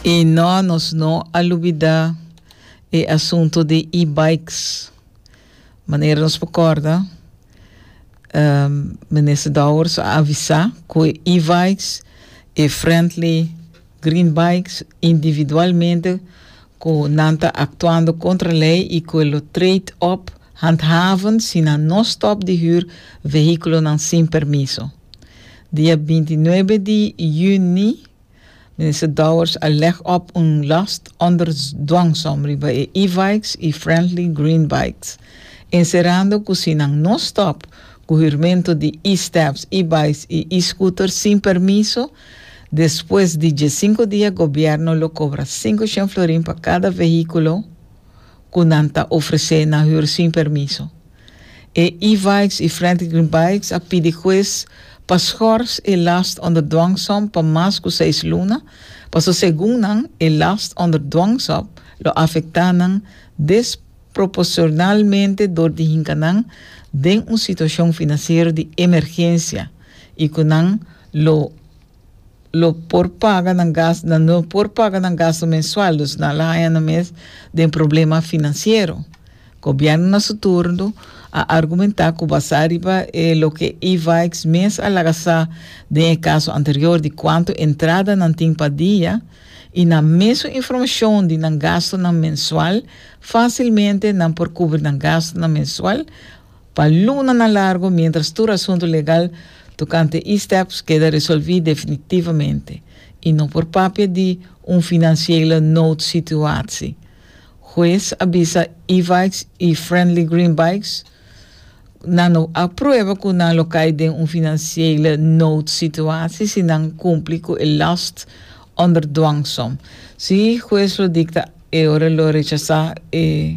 I no, nos no a lubida e asunto di e-bikes. Manera nos por corda, um, Minister Dowers a avisa cu e e-bikes, e friendly green bikes, individualmente cu nan ta actuando contra ley y cu e lo trade op handhaven si nan no stop di huur vehiculonan sin permiso. Dia binti nuebe di yüni Minister Dowers a leg op un last onder dwangsom riba e e-bikes i Friendly Green Bikes, encerando cu si nan no stop cu hürmento di e-steps, e-bikes i e-scooter sin permiso, despues di diescinco dia Gobierno lo cobra cinco shen florin pa cada vehiculo cu nan ta ofrece na hür sin permiso. E E-Vikes i Frantic Green Bikes a pidi hues pa schors e last onder dwangsom pa mas ku seis luna, paso segun nan e last onder dwangsom lo afektá nan desproporsionalmente dor di hinka nan den un situashon finansiero di emergensia i ku nan lo lo por paga nan gas, nan no por paga nan gasto mensual, dus nan a la haña nan mes den problema finansiero. Gobièrnu na su turno a argumentá ku basá riba e loke Evaix mes a laga sa den e kaso anterior di kuantu entrada nan tin pa dia i na mesun informashon di nan gastonan mensual, fásilmente nan por kubri nan gastonan mensual. Pa lunanan largu mientras tur asuntu legal tokante e-steps keda resolví definitivamente i no por papia di un finansiële noodsituatsi, Hues a bisa e-bikes i Friendly Green Bikes nan no a prueba ku nan lo kai den un finansiële noodsituatsi si nan kumpli ku e last onder dwangsom. Si Hues lo dikta e ora lo rechasá e.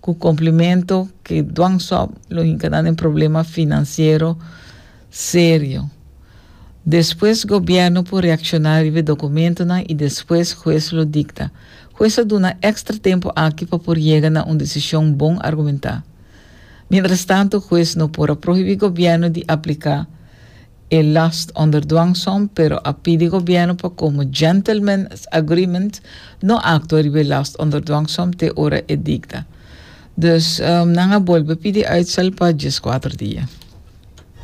cu complemento ke dwangsop lo hinca na den problema financiero serio. Despues gobierno por reacciona riba e documentonan y despues hues lo dicta. Hues a duna extra tempo aki pa por yega na un decision bon argumenta. Mientras tanto hues no por a prohibi gobierno di aplica. E last onder dwang som pero a pidi gobierno pa komo gentlemen's agreement no aktua riba e last onder dwang som te ora e dikta. Dus nan a bolbe pidi uitstel pa dieskuater dia.